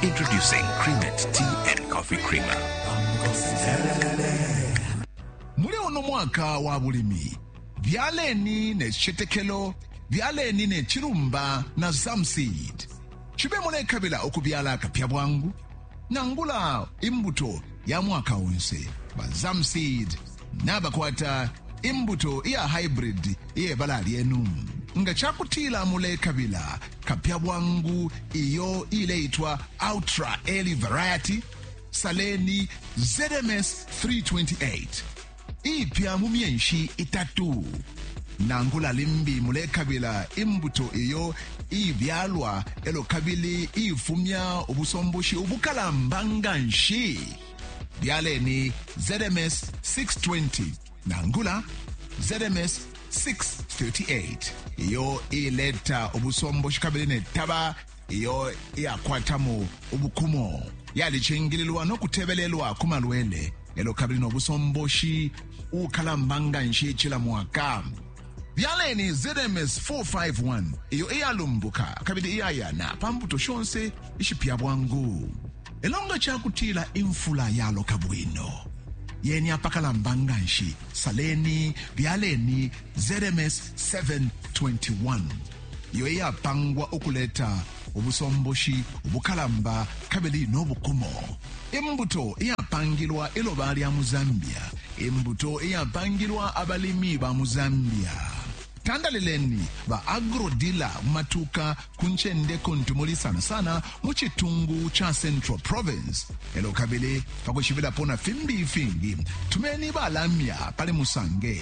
Introducing Creamette Tea and Coffee Creamer. muli uno mwaka wa bulimi byaleni ne citetekelo byaleni ne cilumba na zamseed cibe mulekabila ukubyala akapya bwangu nangula imbuto ya mwaka onse ba zamseed nabakwata imbuto iya haibridi iye bala lyenu. Nga ca kutila mulekabila kapya bwangu iyo iileitwa Ultra Early Variety, saleni ZMS 328 iipya mu myenshi itatu nangula limbi mulekabila imbuto iyo iibyalwa elo kabili iifumya ubusomboshi ubukalamba nga nshi Byaleni ZMS 620 nangula ZMS 638 iyo ileta ubusomboshi kabili ne taba iyo iyakwatamo ubukumo yalicingililwa no kutebelelwa ku malwele elo kabili no busomboshi ukalamba nga nshi cila mwaka byaleni zms 451 iyo iyalumbuka kabili iyayana pa mbuto shonse ishipya bwangu elo nga cakutila imfula yaloka bwino yeni apakalamba nga nshi saleni byaleni zms 721 iyo iyapangwa ukuleta ubusomboshi ubukalamba kabili no bukumo. Imbuto iyapangilwa iloba lya mu Zambia. Imbuto iyapangilwa abalimi ba mu Zambia. Tandalileni ba agrodila mu matuka ku ncende kuntu muli sana sana mu citungu ca Central Province. Elo kabili pakushibilapo na fimbi ifingi tumeni balamya pali musange